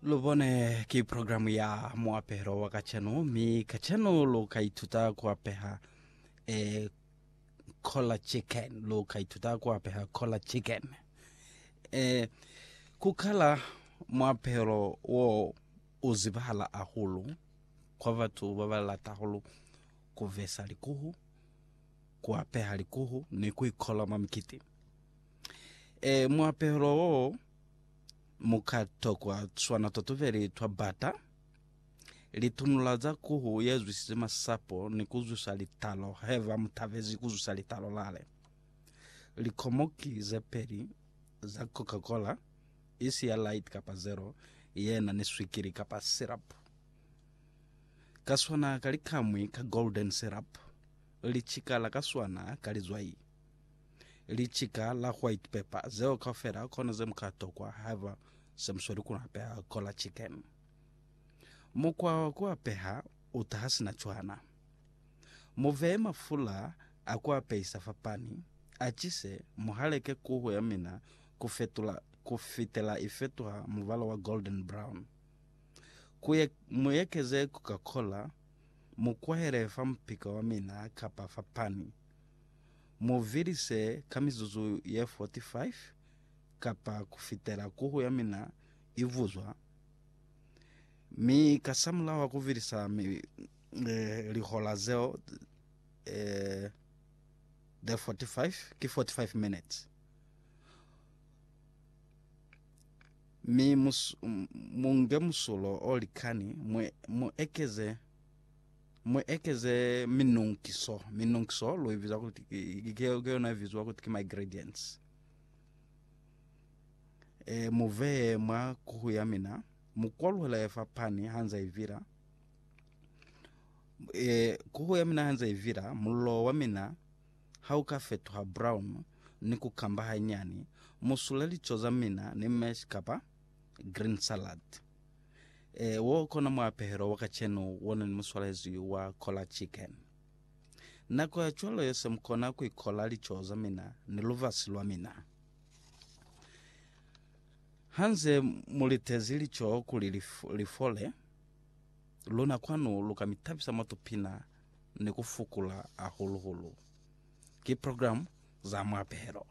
lubone ki programu ya muapelo wa kacenu mi kacenu lu ka ituta ku apeha e cola chicken lu ka ituta ku apeha cola chicken e ku kala muapelo wo u zibahala ahulu kwa batu ba ba lata hulu ku vesa likuhu ku apeha likuhu ni ku ikola mwa mikiti E, muapelo wo mu ka tokwa swana totubeli twa bata, litunula za kuhu ye zwisize masapo ni ku zwisa litalo haiba mu tabezi ku zwisa litalo lale. Likomoki ze peli za Coca-Cola, isi ya light kapa zero, ye na ni swikili kapa syrup. Ka swana ka likamwi ka golden syrup, licikala ka swana ka lizwai. Licika la white pepper zeo kaufela kona ze muka tokwa haiba se musweli ku apeha cola chicken. Mukwa wa ku apeha u taha sina cwana. Mu veye mafula a ku apehisa fa pani, a chise, mu haleke kuhu ya mina ku fetula ku fitela i fetuha mubala wa golden brown. Ku ye, mu ekeze Coca-Cola, mu kwahele fa mupika wa mina kapa fa pani. Mu vilise ka mizuzu ye 45 kapa kufitela kuhu ya mina i vuzwa, mi kasamulaho a kuvilisa lihola zeo ze 45, ki 45 minutes, mi mu nge musulo o likani, mu ekeze Mu ekeze minonkiso. Minonkiso lu ibiza kuti ki, ki, ki yona ibiziwa kuti ki ma-ingredients. E, mu veye mwa kuhu ya mina, mu kwaluhela ye fa pani hanza ivila. E, kuhu ya mina hanza ivila, mullo wa mina ha u ka fetuha brown ni ku kamba hanyani, mu sule lico za mina ni mash kapa green salad. Ee, wo kona muapehelo wa kacenu wona ni muswalezwi wa Kola Chicken. Nako ya cwalo yose mukona kuikola lico za mina ni luvasi lwa mina. Hanze mulitezi lico kuli lifole, luna kwanu luka mitabisa mwa tupina ni kufukula hahulu-hulu. Ki program za muapehelo.